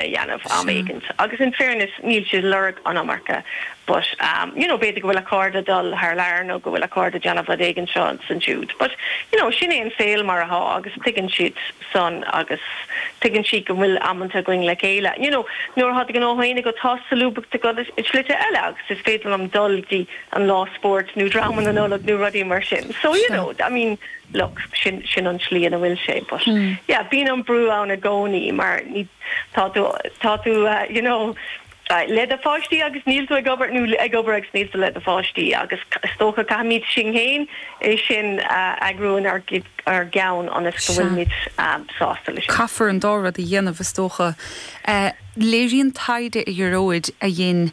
a dhéanamh am éigint agus in fairness níl siad ag lorg an iomarca but you know b'fhéidir go bhfuil a cairde dul thar lear nó go bhfuil a cairde déanamh rud éigint seo is ansiúd but you know sin é an saol mar athá agus tuigeann siad san agus tuigeann siad go bhfuil amanta againn le chéile you know nuair athá do ghnó féin agat tá solúbthacht agat i slite eile agus is féidir liom dul go dtí an lá spóirt nó dráma na Nollag nó rudaí mar sin so you know I mean look, sin, sin an tslí ina bhfuil sé but yeah bíonn an brú ann i gcónaí mar ní, tá tú, tá tú you know le do pháistí agus níl tú ag obair nó ag obair agus níl tú le do pháistí agus is dócha caithfimid sinn féin é sin a eagrú in ár gceann ionas go bhfuilimid sásta leis. Caithfear an dá rud a dhéanamh is dócha. Léiríonn taighde a Ghearóid a dhein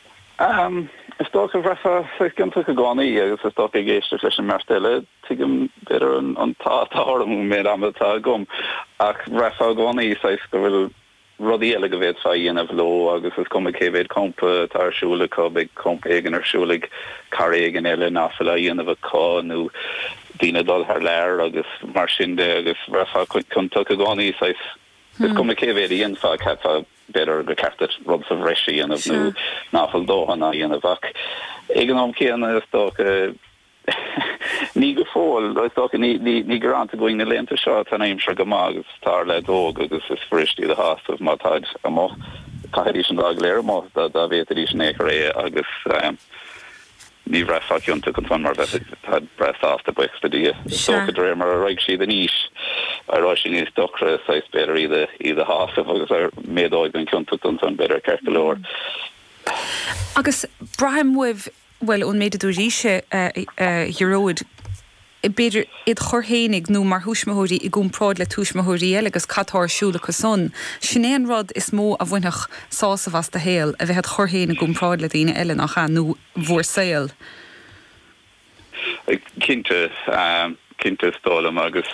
Is dócha go bhraithfeá sách ciontach i gcónaí agus is dócha ag éisteacht leis an mbeirt eile, tuigim b'fhéidir an t-ádh atá orm ón méid ama atá agam ach bhraithfeá i gcónaí saghas go bhfuil rudaí eile go bhféadfá a dhéanamh leo agus is cuma cé mhéid campa atá ar siúl acu, beidh campa éigin ar siúl ag cara éigin eile nach bhfuil á dhéanamh acu nó daoine ag dul thar lear agus mar sin de agus bhraithfeá ciontach i gcónaí saghas is cuma cé mhéid a dhéanfá, bhraithfeá. B'fhéidir gur ceart duit rud sa bhreis a dhéanamh nó ná fuil dóthain á dhéanamh agat ach ag an am céanna is dócha ní go fóill, is dócha ní gearánta dhúinn na laethanta seo, tá an aimsir go maith agus tá na leaids óg agus is fuirist iad a shásamh má táid amuigh. Caithfidís an lá go léir amuigh dá bhféadfaidís in ao'chor é agus. Ní bhraithfeá ciontach ansan mar bheifeá breá sásta buíochas le Dia. Is dócha de réir mar a raghaidh siad in aois a raghaidh sé níos deacra saghas b'fhéidir iad a shásamh agus a méadóidh an ciontacht ansan b'fhéidir ceart go leor. Agus braithim uaibh, bhuel ón méid a dúiríse a Ghearóid, b'fhéidir id chur fhéinig nó mar thuismitheoirí i gcomparáid le tuismitheoirí eile agus cad tá ar siúl acu san. Sin é an rud is mó a bhainfeadh sásamh as do shaol, a bheith id chur féin i gcomparáid le daoine eile, nách ea, nó bhur saol. Cinnte, cinnte is dóigh liom agus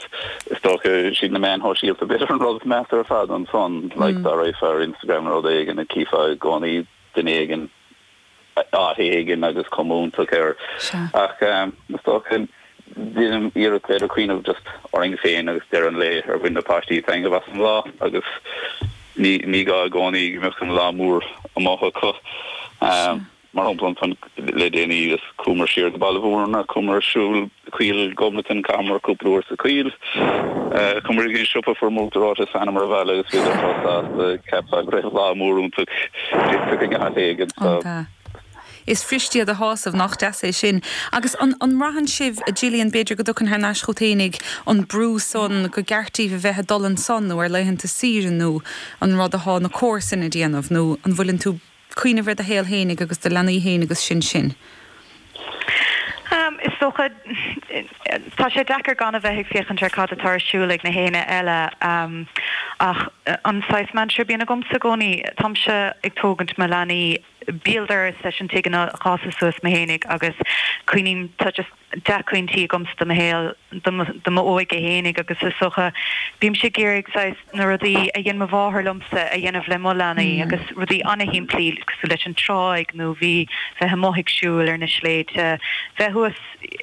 is dócha siad na meáin shóisialta b'fhéidir an rud is measa ar fad ansan, like dá raghfá ar Instagram nó rud éigin chífeá i gcónaí duine éigin, áit éigin agus cuma iontach air ach is dócha déanaim iarracht b'fhéidir cuimhneamh just orainn féin agus deireadh an lae ar bhain na páistí taitneamh as an lá agus ní ní gá i gcónaí go mbeadh an lá mór amach acu mar shampla ansan le déanaí is chuamar siar go Baile Bhuirne chuamar ag siúl Coill Ghobnatan, chaitheamar cúpla uair sa choill. Chuamar go dtí an siopa fuaireamar uachtar reoite, thánamar abhaile agus bhíodar chomh sásta. Cheapfá go raibh lá mór iontach déanta ag na haon éinne so. An ea? Is fuirist iad a shásamh, nách deas é sin? Agus an mbraitheann sibh, a Jillian, b'fhéidir go dtagann thar n-ais chút fhéinig an brú san, go gceart daoibh a bheith a' dul ansan nó ar laethanta saoire nó an rud athá na comharsain a' déanamh nó an bhfuileann tú cuimhneamh ar do shaol fhéinig agus do leanaí fhéin agus sin sin. Is dócha, tá sé deacair gan a bheith ag féachaint ar cad atá ar siúl ag na haoinne eile ach an saghas mantra a bhíonn agamsa i gcónaí, táimse ag tógaint mo leanaí, béal dorais leis an tigh inar fhásas suas mé fhéinig agus coinním, tá just. dea-chuimhní agamsa do mo shaol, do m'óige fhéinig agus is dócha, bímse ag iarraidh saghas na rudaí a dhein mo mháthair liomsa a dhéanamh le mo leanaí agus rudaí ana-shimplí cosúil leis an tráigh nó bheith, bheith amuigh ag siúl ar na sléibhte, bheith thuas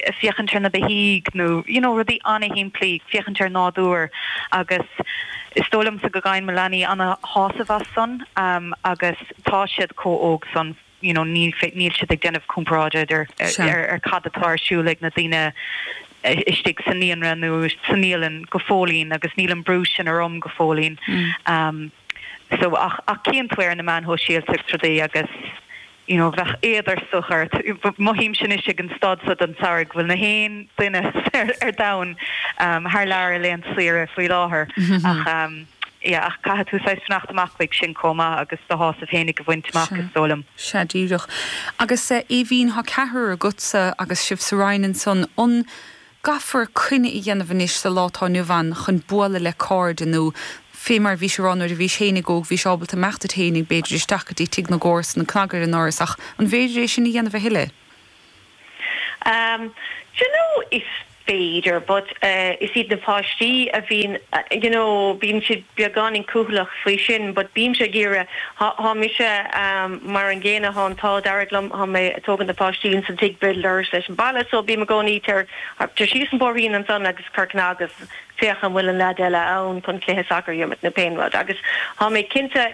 a' féachaint ar na beithígh nó you know rudaí ana-shimplí, féachaint ar nádúr agus is dóigh liomsa go bhfaigheann mo leanaí ana-shásamh as san agus tá siad comh óg san. you know, níl fé, níl siad ag déanamh comparáid idir, Sea. ar, ar cad atá ar siúl ag na daoine istigh sa naíonra nó sa naíolann go fóillín agus níl an brú sin orm go fóillín. Umm. So, ach, ach cíonn tú ar na meáin shóisialta agus rudaí agus, you know, bheadh éad ar sórt ort, mothaím sin anois ag an staid so den tsamhraidh go bhfuil na haon duine ar, ar domhan, umm, thar lear ar laethanta saoire faoi láthair ach, umm, Yeah, ach caithfidh tú saghas fanacht amach uaidh sin comh maith agus do shásamh fhéinig a bhaint amach, is dóigh liom. Sea, díreach. Agus, a Aoibhínn, thá ceathrar agat-sa agus sibh sa Rinn ansan, an gcaithfear coinne a dhéanamh anois sa lá tá inniu ann chun bualadh le cairde nó, fé mar a bhís ag rá, nuair a bhís fhéinig óg bhís ábalta imeacht duit fhéinig, b'fhéidir, isteach go dtí tigh na gcomharsan, cnag ar an ndoras, ach an bhféidir é sin a dhéanamh a thuilleadh? Um d'you know is féidir but eh is iad na páistí a bhíonn you know bíonn siad beagáinín cúthaileach faoi sin but bímse ag iarraidh thá thá mise um mar an gcéanna thá an t-ádh dearg liom thá mé a' tógaint na páistí ins an tigh béal dorais leis an baile so bím i gcónaí tar tar síos an bóithrín ansan agus cuir cnag agus féach an bhfuil an leaid eile ann chun cluiche sacair a imirt nó pé an rud agus thá mé cinnte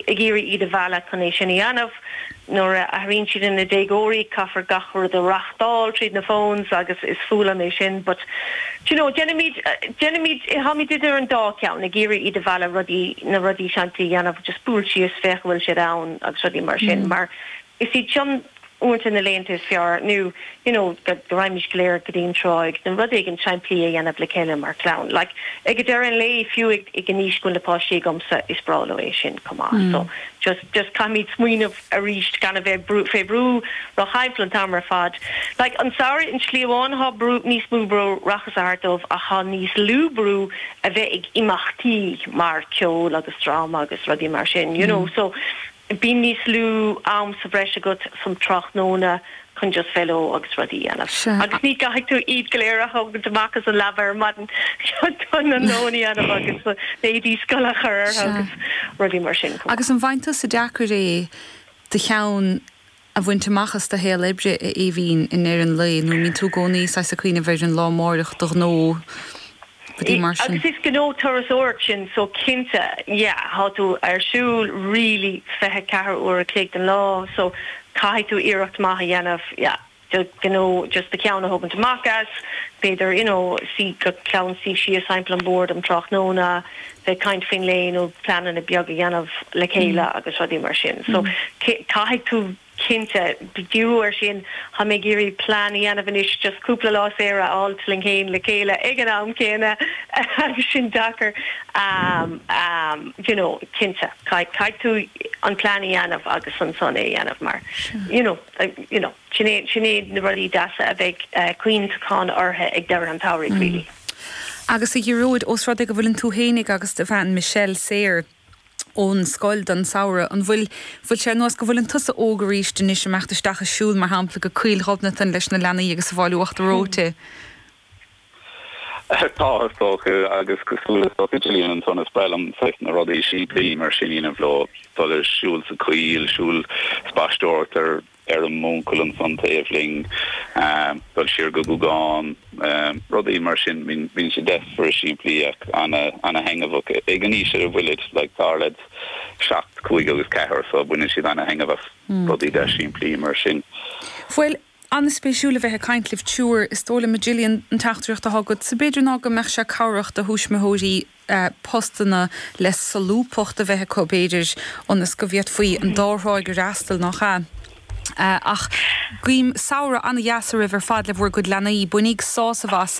ag iarraidh iad a mhealladh chun é sin a dheanamh. Nuair a athraíonn siad ina déagóirí caithfear gach rud a reachtáil tríd na phones agus is fuath liom é sin but d'you know déanaimíd, déanaimíd, táimíd idir an dá ceann ag iarraidh iad a mhealladh rudaí, na rudaí seanda a dheanamh just buail síos féach an bhfuil siad ann agus rudaí mar sin mar is iad sin uaireanta na laethanta is fearr ná you know go raghaimís go léir go dtí an tráigh nó rud éigin simplí a dhéanamh le chéile mar chlann like ag a deireadh an lae fiú ag ag an aois go bhfuil na páistí agamsa is breá leo é sin chomh maith so just just caithfimíd smaoineamh arís gan a bheith brú fé bhrú like an t-am ar fad like an samhradh i slí amháin thá b'fhéidir níos mó brú reatha thart dóibh ach thá níos lú brú a bheith ag imeachtaí mar ceol agus dráma agus rudaí mar sin you know so Bíonn níos mó am sa bhreis agat um tráthnóna chun just bheith leo agus rudaí a dhéanamh. Sea. Agus ní gcaithfidh tú iad go léir a thógaint amach as an leaba ar maidin chun na lón a dhéanamh agus na h-éadaí scoile a chur ortha agus rudaí mar sin. Agus an bhfaigheann tusa deacair é do cheann a bhaint amach as do shaol oibre a Aoibhínn i ndeireadh an lae nó mbíonn tú i gcónaí saghas ag cuimhneamh ar an lá amáireach do ghnó rudaí mar sin. Is gnó turasóireacht sin so cinnte yeah tá tú ar siúl really fiche ceathair uair a chloig den lá so caithfidh tú iarracht maith a dhéanamh yeah d'you know just do cheann a thógaint amach as b'fhéidir you know go clann suí síos thimpeall an bord um tráthnóna bheith caint faoin lae nó pleananna beaga a dhéanamh le chéile agus rudaí mar sin. So caithfidh tú cinnte díriú ar sin. Táimid ag iarraidh plean a dhéanamh anois just cúpla lá saor a fháilt linn fhéin le chéile ag an am céanna agus sin deacair d'you know cinnte caithfidh tú an plean a dhéanamh agus ansan é a dhéanamh mar you know you know. Sin é, sin é na rudaí deasa a bheidh cuimhneachán orthu ag deireadh an tsamhraidh really. Agus a Ghearóid, ós rud é go bhfuileann tú fhéinig agus do bhean Michelle saor ón scoil don samhradh, an bhfuil, bhfuil sé ar nós go bhfuileann tusa óg arís anois ag imeacht isteach ag siúl mar shampla go Coill Ghobnatan leis na leanaí agus ag fáil uachtar reoite? Tá, is dócha, agus cosúil is dócha d'you know is breá liomsa na rudaí simplí mar sin a dhéanamh leo, dul ag siúl sa choill, siúl, spaisteoireacht ar fheirm m'úncail ansan taobh linn, dul siar go Gúgán, rudaí mar sin. Bíonn sé deas simplí ach ana-thaitneamhach. Ag an aois a bhfuilid, like, tá siad, seacht, cúig agus ceathair, so baineann siad ana-thaitneamh as rudaí deas simplí mar sin. Bhuel, An-spéisiúil a bheith ag caint libh Triúr, is dóigh liom a Gillian an teachtaireacht atá agatsa b'fhéidir ná go mbeadh sé cabhrach do thuismitheoirí postanna le solúbthacht a bheith acu b'fhéidir ionas go bhféadfaí an dá thráigh a fhreastal, nach ea? Ach guím samhradh ana-dheas oraibh ar fad le bhur gcuid leanaí. Bainigí sásamh as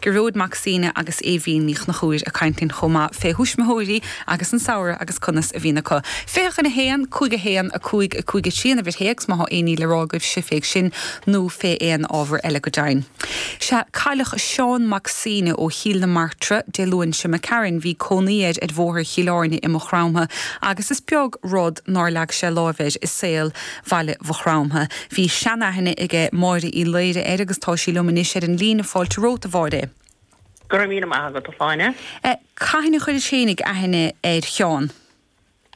Gearóid Mac Suibhne agus Aoibhín Ní Chnochúir ag caint linn chomh maith fé thuismitheoirí agus an samhradh agus conas a bhíonn acu. Féach 1, 5, 1, 5, 5, 3 an uimhir théacs má thá aon ní le rá agaibhse fé sin nó fé aon ábhar eile go deimhin. Sea, cailleadh Seán Mac Suibhne ó Chíll na Martra Dé Luain seo imigh tharainn bhí cónaí air ar bhóthar Chill Áirne i Maigh Chromtha agus is beag rud nár leag sé lámh air i saol Bhaile Mhaigh Chromtha. Bhí seanaithne aige Máire Uí Laoire air agus tá sí liom anois ar an líne Fáilte romhat a Mháire. Go raibh míle maith agat a Dháithí. Cathain a chuiris féinig aithne ar Sheán?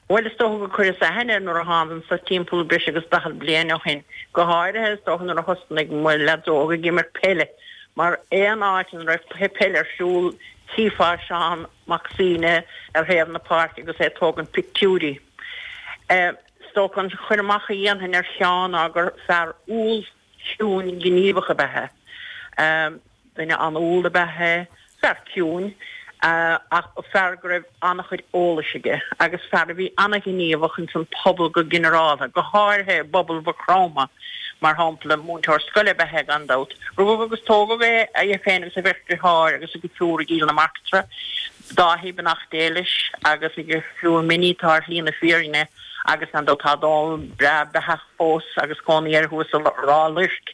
Bhuel is dócha gur chuireas aithne air nuair a thánag anso timpeall breis agus daichead bliain ó shin. Go háirithe is dócha nuair a thosnaigh mo leaids óg ag imirt peile mar aon áit ina raibh cluiche peile ar siúl chífeá Seán Mac Suibhne ar thaobh na páirce agus é ag tógaint pictiúirí. Is dócha an cur amach a dhéanfainn ar Sheán ná gur fear umhal, ciúin, gníomhach ab ea é. Duine an-umhal ab ea é. Fear ciúin, ach fear go raibh an-chuid eolais aige agus fear a bhí an-ghníomhach ins an pobal go ginearáltha, go háirithe i bpobal Mhaigh Chromtha, mar shampla. Múinteoir scoile ab ea é gan dabht. Rugadh agus tógadh é féin agus a bheirt deartháir agus a dheirfiúr i gCill na Martra. Dáithí beannacht Dé leis agus a dheirfiúr Minnie atá ar shlí na fírinne agus ar ndóigh tá Dónall beo beathach fós agus cónaí air thuas i Ráth Luirc.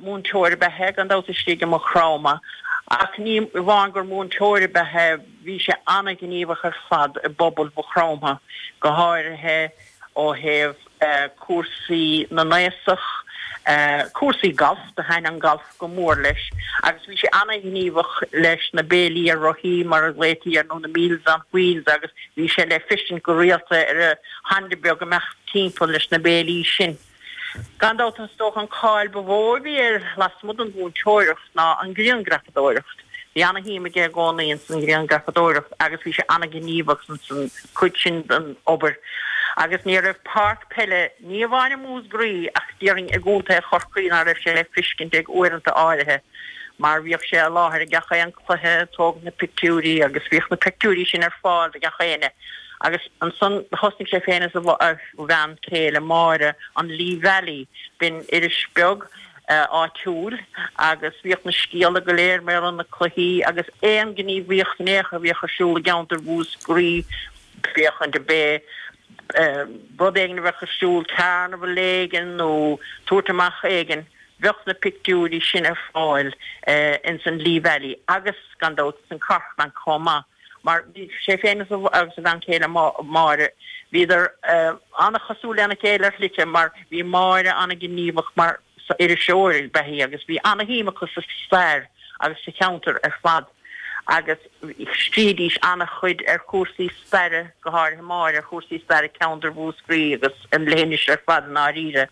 Múinteoir ab ea é gan dabht istigh i Maigh Chromtha ach ní amháin gur múinteoir ab ea é bhí sé an-ghníomhach ar fad i bpobal Mhaigh Chromtha go háirithe ó thaobh cúrsaí na n-aosach, cúrsaí gailf, do thaitn an gailf go mór leis agus bhí sé ana-ghníomhach leis na béilí ar rothaí mar a ghlaotaí air nó na Meals on Wheels agus bhí sé le feiscint go rialta ar a Honda beag ag imeacht timpeall leis na béilí sin. Gan dabht is dócha an cáil ba mhó a bhí air lasmuigh den mhúinteoireacht ná an grianghrafadóireacht. Bhí an-shuim aige i gcónaí ins an ghrianghrafadóireacht agus bhí sé an-ghníomhach ins an cuid sin den obair. Agus ní raibh páirc peile ní amháin i Múscraí ach déarfainn i gContae Chorcaí ná raibh sé le feiscint ag uaireanta áirithe mar bhíodh sé i láthair i gach aon cluiche ag tógaint na pictiúirí agus bhíodh na pictiúirí sin ar fáil do gach éinne Agus ansan thosnaigh sé féin is a bhean chéile, Máire, an Lee Valley, b'in iris bheag áitiúil agus bhíodh na scéalta go léir mar gheall ar na cluichí agus aon ghníomhaíocht in ao' chor a bhíodh ar siúl i gceantar Mhúscraí, bíodh an pé rud éigin a bheadh ar siúl, carnival éigin nó tabhairt amach éigin, bheadh na pictiúirí sin ar fáil ins an Lee Valley agus gan dabht san cartlann chomh maith. Mar bhí sé féin agus a bhean chéile Máire, bhíodar an-chosúil lena chéile ar shlite mar bhí Máire an-ghníomhach mar iriseoir ab ea í agus bhí an-shuim acu sa stair agus sa cheantar ar fad agus scríobhaidís an-chuid ar chúrsaí staire, go háirithe Máire, ar chúrsaí staire ceantar Mhúscraí agus an leithinis ar fad i ndáiríre.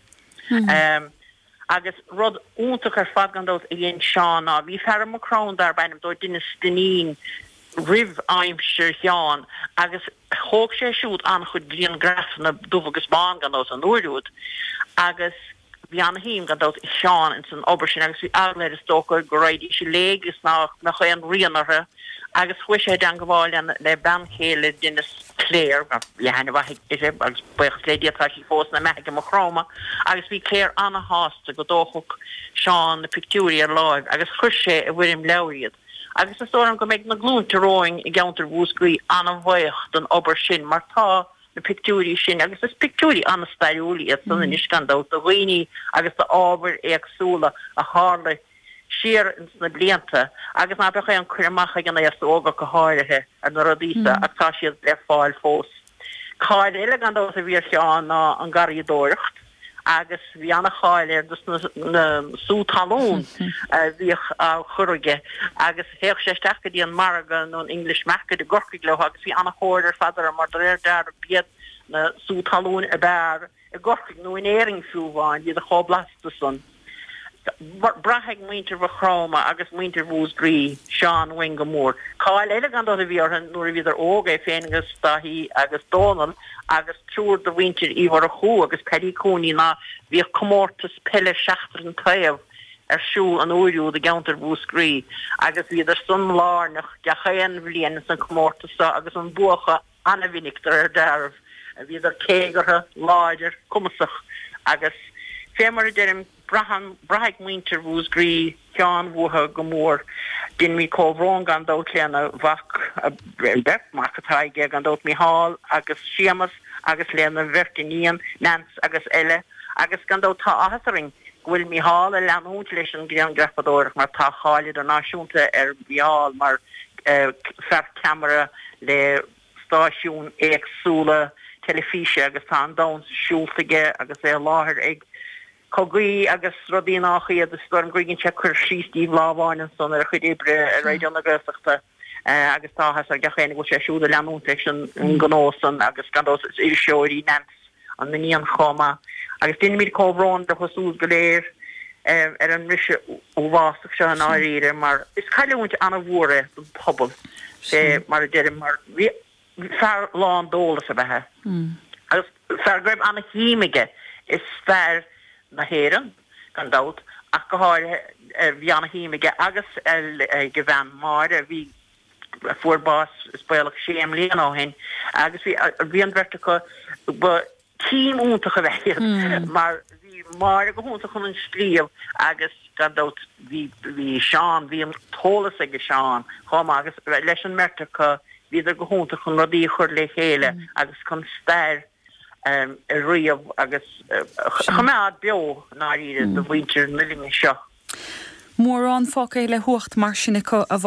Agus rud iontach ar fad gan dabht a dhein Seán ná, bhí fear i Maigh Chromtha darb ainm dó Dennis Dinneen roimh aimsir Sheáin agus thóg sé siúd an-chuid grianghraifeanna dubh agus bán gan dabht an uair úd agus bhí an-shuim gan dabht ag Seán ins an obair sin agus bhí eagla air is dócha go raghaidís i léig is nach mbeadh aon rian orthu. agus chuaigh sé i dteangabháil le bean chéile Dhennis, Clare, bhí aithne mhaith uirthi agus buíochas le Dia tá sí fós ina beathaidh i Maigh Chromtha agus bhí Clare ana-shásta go dtógfadh Seán na pictiúirí ar láimh agus chuir sé i bhfoirm leabhair iad agus is dóigh liom go mbeidh na glúinte romhainn i gceantar Mhúscraí ana-bhaoch den obair sin mar tá na pictiúirí sin agus is pictiúirí ana-stairiúil iad san anois gan dabht do dhaoine agus d'ábhair éagsúla a tharla i siar ins na blianta agus ná beadh aon cur amach ag an aos óg ach go háirithe ar na rudaí so ach tá siad le fáil fós. Cáil eile gan dabht a bhí ar Sheán ná an garraíodóireacht agus bhí ana cháil air dos na na sú talún a bhíodh á chur aige agus théadh sé isteach go dtí an margadh nó an English Market i gCorcaigh leo agus bhí ana thóir ar fad orthu mar do réir dealraimh b'iad na sú talúin ab fhearr i gCorcaigh nó in Éirinn fiú amháin, bhíodar chomh blasta san. Braithfidh muintir Mhaigh Chromtha agus muintir Mhúsgraí Seán uainn go mór. Cáil eile gan dabht a bhí ortha nuair a bhíodar óg, é féin agus Daithí agus Dónal agus triúr de mhuintir Uí Mhurchú agus Paddy Cooney ná bhíodh comórtas peile seachtar an taobh ar siúl an uair úd i gceanntar Mhúsgraí agus bhíodar san lárnach gach aon bhliain san comórtas so agus an bua acu ana-mhinic do réir deáraimh, bhíodar téagartha, láidir, cumasach agus fé mar a deirim, braitheann, braithfidh muintir Mhúsgraí Seán uathu go mór. Deinimíd comhbhrón gan dabht lena mhac, beirt mhac atá aige gan dabht, Micheál agus Séamas agus lena bheirt iníon, Neans agus Ella agus gan dabht tá áthas orainn go bhfuil Mícheál ag leanúint leis an grianghrafadóireacht mar tá cáil idirnáisiúnta ar Mhícheál mar fear ceamara le stáisiúin éagsúla teilifíse agus tá an domhan siúlta aige agus é i láthair ag cogaí agus rudaí nách iad. Is dóigh liom gur dhein sé cur síos díbh lá amháin ansan ar a chuid oibre ar Raidió na Gaeltachta. agus tá áthas ar gach éinne go bhfuil sé siúd ag leanúint leis an ngnó san agus gan dabht is iriseoir í Neans, an iníon, chomh maith agus déanaimíd comhbhrón leo siúd go léir ar an mbriseadh uathbhásach seo i ndáiríre mar is cailliúint ana-mhór é don phobal, fé mar a deirim, mar bhí. fear lán d'eolas ab ea é agus fear go raibh an-shuim aige i stair na hÉireann gan dabht ach go háirithe. Bhí an-shuim aige agus ag a bhean Máire a bhí, a fuair bás is baolach sé mbliana ó shin agus bhí an bheirt acu, ba. Team iontach ab ea iad mar bhí Máire go hiontach chun an scríobh agus gan dabht bhí bhí Seán bhí an t-eolas ag Seán chomh maith agus leis an mbeirt acu bhíodar go hiontach chun rudaí a chur le chéile agus chun stair a ríomh agus a choimeád beo i ndáiríre do mhuintir na linne seo. Mórán fágtha le huacht mar sin acu a